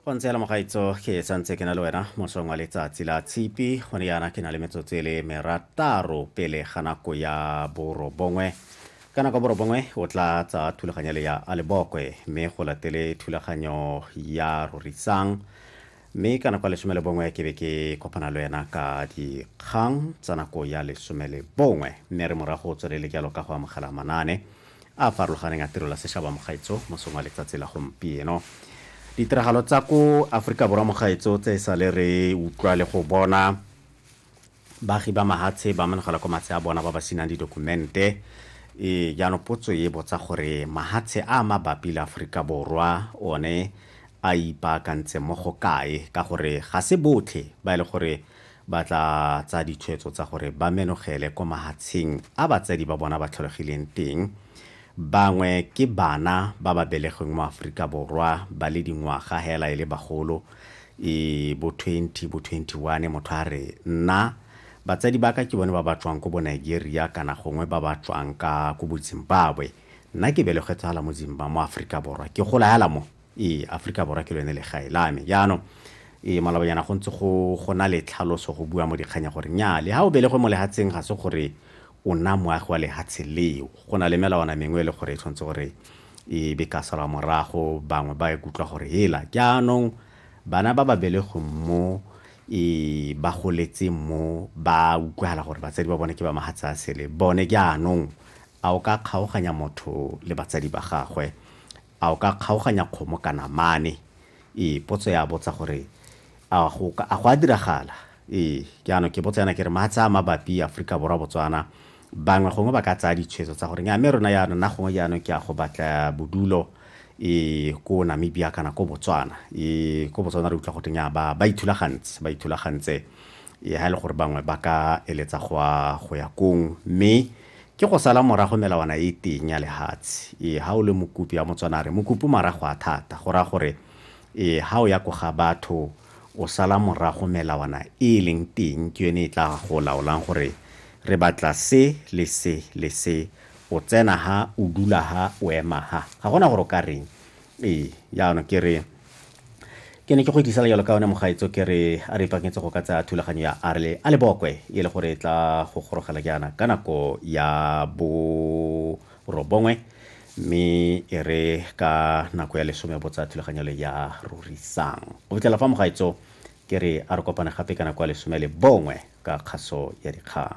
go ntse la mogaitso ke santse ke na le wena mosong wa letsatsi la tshipi gone yana ke na le metsotso e le merataro pele ga nako ya borobongwe ka nako borobongwe o tla tsa thulaganyo le ya alebokwe mme go latele thulaganyo ya rorisang mme ka nako ya lesome le bongwe ke be ke kopana le wena ka dikgang tsa nako ya lesome le bongwe mme re morago o tswelele jalo ka go amogela manaane a farologaneng a tirelo ya sešaba mogaetso mosong wa letsatsi la gompieno ditiragalo tsa ko aforika borwa mogaetso tse e sa le re utlwa le go bona Baagi ba Mahatshe ba amanegela kwa matshe a bona ba ba senang didokumente. Ee, jaanong potso e botsa gore mahatshe a a mabapi le Aforika Borwa one a ipaakantse mo go kae ka gore ga se botlhe ba e le gore ba tla tsaya ditshwetso tsa gore ba menogele kwa mahatsheng a batsadi ba bona ba tlholegileng teng. Bangwe ke bana ba ba belegweng mo Aforika Borwa ba le dingwaga hela e le bagolo e bo 20 bo 21 motho a re nna batsadi ba ka ke bone ba ba tswang ko bo Nigeria kana gongwe ba ba tswang ka ko bo Zimbabwe nna ke belegetse hala mo Zimbabwe mo Afrika Borwa ke gola hala mo ee Afrika Borwa ke lone legae la me jaanong ee malobanyana go ntse go gona le tlhaloso go bua mo dikganya gore nya le ha o belegwe mo lehatseng ga se gore o nna moagi wa lehatshe leo go na le melawana mengwe e le gore e tshwanetse gore e be ka salwa morago bangwe ba e kutlwa gore hela jaanong bana ba ba belegweng mo e ba goletse mo ba utlwala gore batsadi ba bone ke ba mahatsa a sele bone jaanong a o ka kgaoganya motho le batsadi ba gagwe A o ka kgaoganya kgomo ka namane? Ee, potso ya botsa gore a go a go a diragala? Ee, jaanong ke botsa yana ke re matsha a mabapi Aforika Borwa Botswana bangwe gongwe ba ka tsaya ditshwetso tsa gore nya mme rona yana nna gongwe jaanong ke a go batla bodulo e ko Namibia kana ko Botswana e ko Botswana re utlwa go teng ya ba ba ithulagantse ba ithulagantse Ee, ha e le gore bangwe ba ka eletsa go a go ya kong, mme ke go sala morago melawana e teng ya lehatshe. Ee, ha o le mokopi ya Motswana a re mokopi marago a thata, go raya gore ee, ha o ya ko ga batho o sala morago melawana e e leng teng ke yone e tla go laolang gore re batla se le se le se, o tsena ha, o dula ha, o ema ha. Ga gona gore o ka reng, ee yana ke re ke ne ke go itlisela jalo ka one mogaetso ke re a re ipaketse go ka tsaya thulaganyo ya arle a lebokwe e le gore e tla go gorogela jaana ka nako ya borobongwe mme e re ka nako ya lesome bo tsaya thulaganyo le ya rorisang go fitlhela fa mogaetso ke re a re kopane gape ka nako ya lesome le bongwe ka kgaso ya dikgang